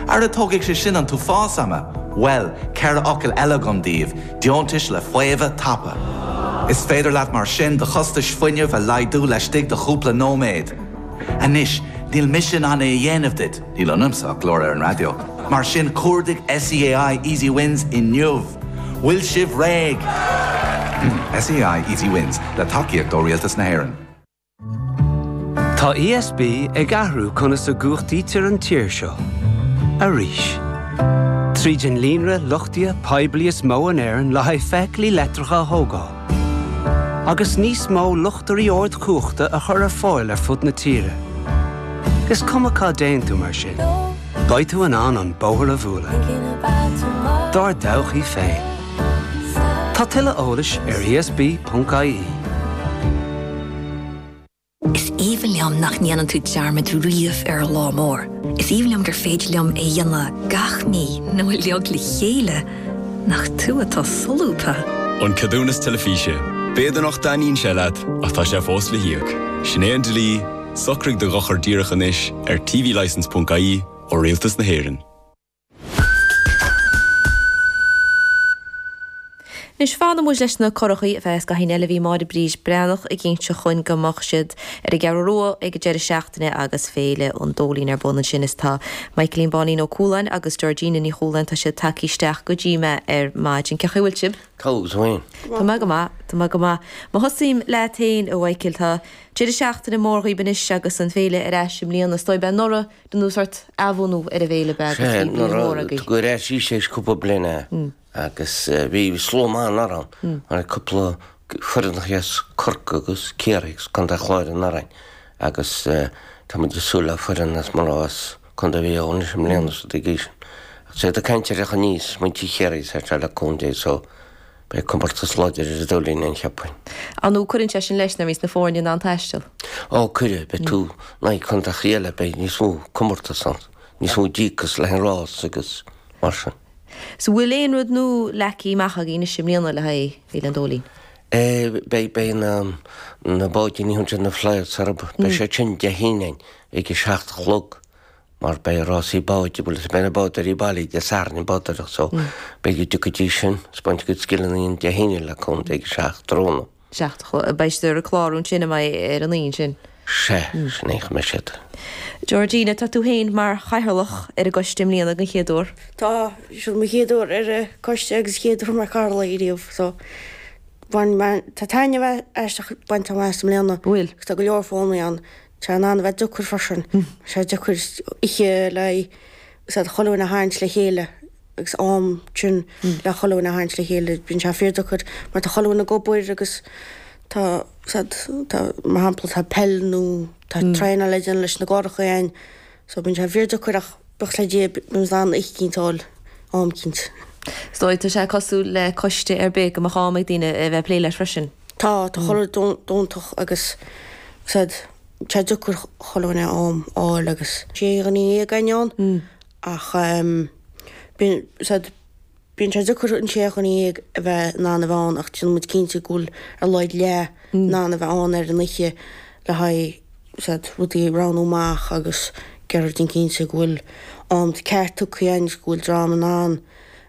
Ach tógfaidh sé sin an t-uafás ama! Bhuel, ceithre fhocal eile agam daoibh, deontais le faomhadh tapa. Is féidir leat mar sin do chostais fuinnimh a laghdú laistigh de chúpla nóiméad. Anois, níl mise in ann é a dhéanamh duit, níl ionamsa ach glór ar an raidió, mar sin cuardaigh SEAI Easy Wins inniu! Bhfuil sibh réidh? SEAI Easy Wins, le tacaíocht ó Rialtas na hÉireann. Tá ESB ag athrú conas a gcumhachtaítear an tír seo arís. Tríd an líonra luchtaithe poiblí is mó in Éirinn le haghaidh feithiclí leictreacha a thógáil, agus níos mó luchtairí ardchumhachta a chur ar fáil ar fud na tíre, is cuma cá dtéann tú mar sin, beidh tú in ann an bóthar a bhualadh dár dtodhchaí féin. Tá tuilleadh eolais ar ESB.ie. Is aoibhinn liom nach ndéanann tú dearmad riamh ar lá mór. Is aoibhinn liom gur féidir liom é a dhéanamh gach mí nó uilig le chéile nach tú atá solúbtha. An Ceadúnas Teilifíse. B'fhéidir nach dtaitníonn sé leat ach tá sé fós le híoc. Sin é an dlí, socraigh do dhochar díreach anois ar tvlicence.ie ó Rialtas na hÉireann. Anois fanfaimid leis na curachaí go ceann scaithimh eile bhí Máire Bríd Breathnach ag insint dúinn go mbeadh siad ar an gCeathrú Rua ag an deireadh seachtaine agus Féile an Dóilín ar bun ansin is tá Michaelín Bháinín Ó Cualáin agus Georgina Ní Chualáin tá siad tagtha isteach go dtí mé ar maidin. Cé chaoi bhfuil sibh? Cén chaoi a bhfuil tú féin? Tá mé go maith. Tá mé go maith. Má thosaím leat féin a Mhichael tá deireadh seachtaine mór dhaoib anois agus an Féile ar ais i mbliana is dóigh bhí anuraidh ina sórt athbhunú ar an bhFéile. Bhí, anuraidh tugadh ar ais í th'éis cúpla bliana agus bhí slua maith ann anuraidh, cúpla foireannacha as Corcaigh agus Ciarraí agus Contae an Chláir agus Árainn agus tá muid ag súil le foireann as Maigh Eo as Contae Mhaigh Eo anois i mbliana so dtiocfaidh sin. Sea, tá caint ar a theacht aníos, muintir Chiarraí, is sórt all county so, Beidh comórtas láidir ar an Dóilín cheapfainn. An ea, cuireann sé sin leis nuair a bhíos na foirne in ann taisteal? Ó, cuireann. Beidh tú in aghaidh contaetha eile, beidh níos mó comórtas ann, níos mó díocas leis an rás agus mar sin. So bhfuil aon rud nua leagtha amach agaibh anois i mbliana le haghaidh Féile an Dóilín? Beidh, beidh na, na báidíní iomartha, na fly sob, beidh siad sin Dé hAoine ag a seacht a chlog. mar beidh rásaí bád seoil is beidh na bádóirí bailithe Dé Sathairn ag bádóireacht so beidh siad ag tíocht go dtí sin ag spáint a gcuid scileanna dúinn Dé hAoine le cúnamh Dé ag a seacht tráthnóna. seacht a chlog. Beidh siad ar an clár ansin a mbeidh ar an Aoine sin. Sea, sin é, sin an méid. Georgina, tá tú féin mar Chathaoirleach ar an gcoiste i mbliana den chéad uair. Tá, seo mo chéad uair ar an gcoiste agus chéad uair mar Cathaoirleach riamh so bhain mé, tá taitneamh aisteach bainte agam as an mbliana. Bhfuil. Agus tá go leor foghlaim ann In ann a bheith deacair freisin, bhí sé deacair oíche le haghaidh sórt chuile dhuine a tharraingt le chéile agus ansin le chuile dhuine a tharraingt le chéile, bíonn sé fíor deacair mar tá chuile dhuine ag obair agus tá sórt, tá, mar shampla, tá peil nó tá traenáil ag daoine leis na gcurachaí so bíonn sé fíor deacair ach buíochas le Dia, bíonn siad in ann oíche eicínt a fháil, am eicínt. Is dóigh, tá sé cosúil le coiste ar bith go mbeadh am ag daoine a bheith ag plé leis freisin. Tá, tá chuile rud iontach agus sórt, tá sé deacair chuile dhuine a fháil agus sé dhuine dhéag againn ann ach em bíonn sórt, bíonn sé deacair an sé dhuine dhéag a bheith in ann a bheith ann ach déanann muid cinnte go bhfuil ar a laghad leath in ann a bheith ann ar an oíche le haghaidh sórt, rudaí a roghnú amach agus déanamh cinnte go bhfuil am ceart tugtha agus go bhfuil dream in ann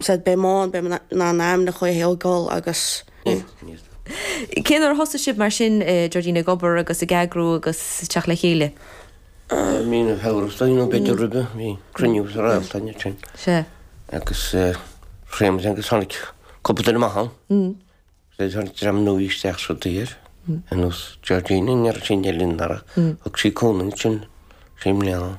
sórt a bheith in ann, a bheith in ann ag an am le chéile ó go leor agus. Cén uair a thosaigh sibh mar sin, Jordine, ag obair agus ag eagrú agus ag teacht le chéile? Bhí na hamhrastáin nó b'fhéidir roimhe, bhí cruinniú sa Réalt ansin. Sea. Agus Séamus agus tháinig cúpla duine amach ann. Bhí sé tháinig dream nua isteach sa daor ar nós Jordine, ní raibh sí in éineacht linn anuraidh, thug sí cúnamh dhúinn i mbliana.